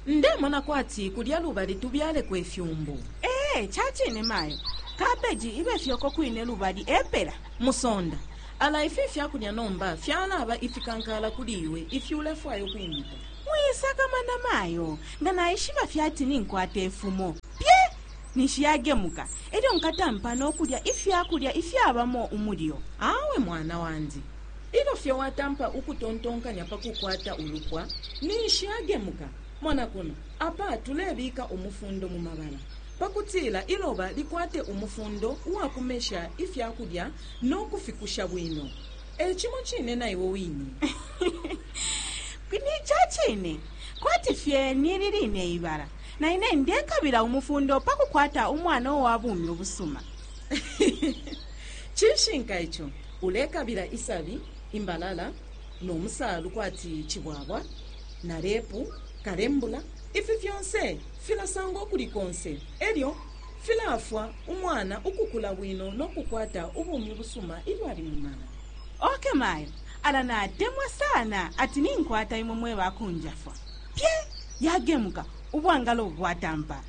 ndemona kwati kulya lubali tubyaleko ifyumbu ee ca cine mayo kabeji ibe fyoko kwine lubali epela musonda ala ifi fyakulya nomba fyalaba ifikankala kuli iwe ifi ulefwaya ukwimita mwisakamana mayo nga naishiba fyati ninkwata ifumo pye ninshi yagemuka, e lyo nkatampa no kulya ifya kulya ifyabamo umulyo. Awe mwana wandi, ilyo fye watampa ukutontonkanya pa kukwata ulupwa, ninshi yagemuka. Mona kuno, apa tulebika umufundo mu mabala pa kutila iloba likwate umufundo uwa kumesha ifya kulya no kufikusha bwino. E cimo cine na iwe wine. Ni ca cine, kwati fye ni ili line ibala, na ine ndekabila umufundo pa kukwata umwana uwa bumi ubusuma cishinka ico ulekabila isabi imbalala no musaalu kwati cibwabwa na lepu kalembula ifi fyonse filasangwa ukuli konse e lyo filaafwa umwana ukukula bwino no kukwata ubumi busuma ilyo ali mu mala oke mayo ala natemwa sana ati ninkwata imwe mwe bakunjafwa pye yagemuka ubwangalo bwatampa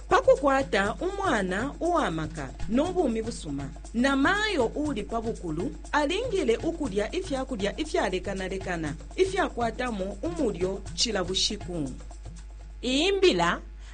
pa kukwata umwana uwa maka no bumi busuma na mayo uli pa bukulu alingile ukulya ifya kulya ifyalekanalekana ifyakwatamo umulyo cila bushiku iyi mbila